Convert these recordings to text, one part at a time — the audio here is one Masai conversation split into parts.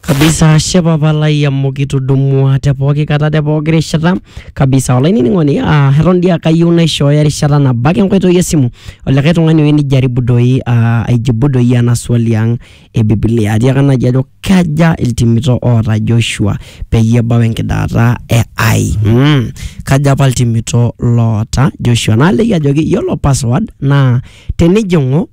kabisa shepa palai amu kitudumua te pooki kata te pooki rishata kabisa olainining'oni ah, eton dii akayieu naishooyo erishata nabo ake enkoitoi esimu olikae tung'ani oyieu nijaribu doi ah, aijibu doi ena swali ang e bibilia atiaka naji ajo kaja iltimito oota joshua peyie ebau enkidaata e ai mm. kaja apa iltimito loota joshua naaliki ajoki yiolo password naa tenijing'u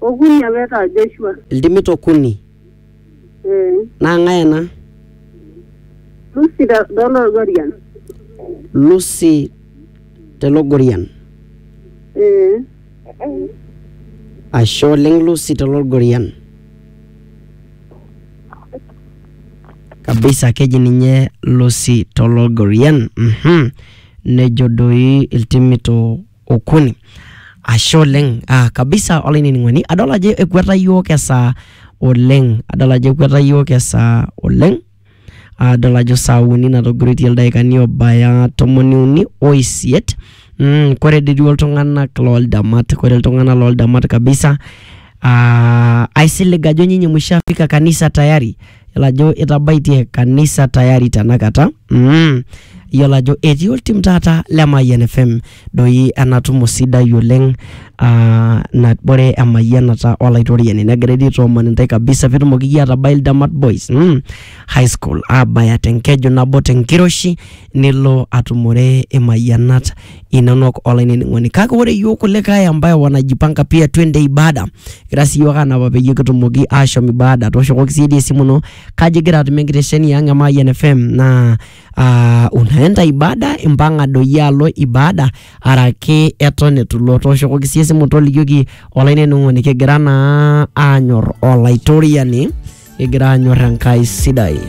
Okuni apa etaa Joshua. Iltimit okuni. Ee. Naa ng'ae ena? Lucy te Lolorian. Lucy te Logorian. Ee. Ashe oleng Lucy te Logorian. Kabisa keji ninye Lucy to Logorian. Mhm. Nejo doi iltimito okuni ashe oleng uh, kabisa olainining'oni adol ajo ekweta yiok esaa oleng adol ajo ekweta yiok esaa oleng adol ajo saa uni natogiroitie ildaikani obaya tomoni uni oisiet mm, kore dii duo iltung'anak loldamat kore iltung'anak loldamat kabisa uh, aisilig ajo nyinyi mushafika kanisa tayari Yiolo ajo itabaitie kanisa tayari tenakata mm. Yiolo ajo etii oltim taata le Mayian FM doi ena tumo sidai oleng aa nabore emayianata olaitoriani negira dii aitooman intae kabisa pitumoki iyie atabai Ildamat Boys mm, high school abaya tenkeju nabo tenkiroshi nilo atumore imayianat inonok olainining'oni kake ore yiok kulikae ambaye wanajipanga pia twende ibada kira sii yiok anapa peyie kitumoki ashom ibada tooshokoki siyie dii esimu ino kaji igira atumie enkitesheni ang e Mayian FM naa uh, unaenda ibada impang'a doi alo ibada araki eton etu ilo tooshokoki siyie esimu tolikioki olainining'oni kigira naa anyorr olaitoriani kigira anyorr Enkai sidai.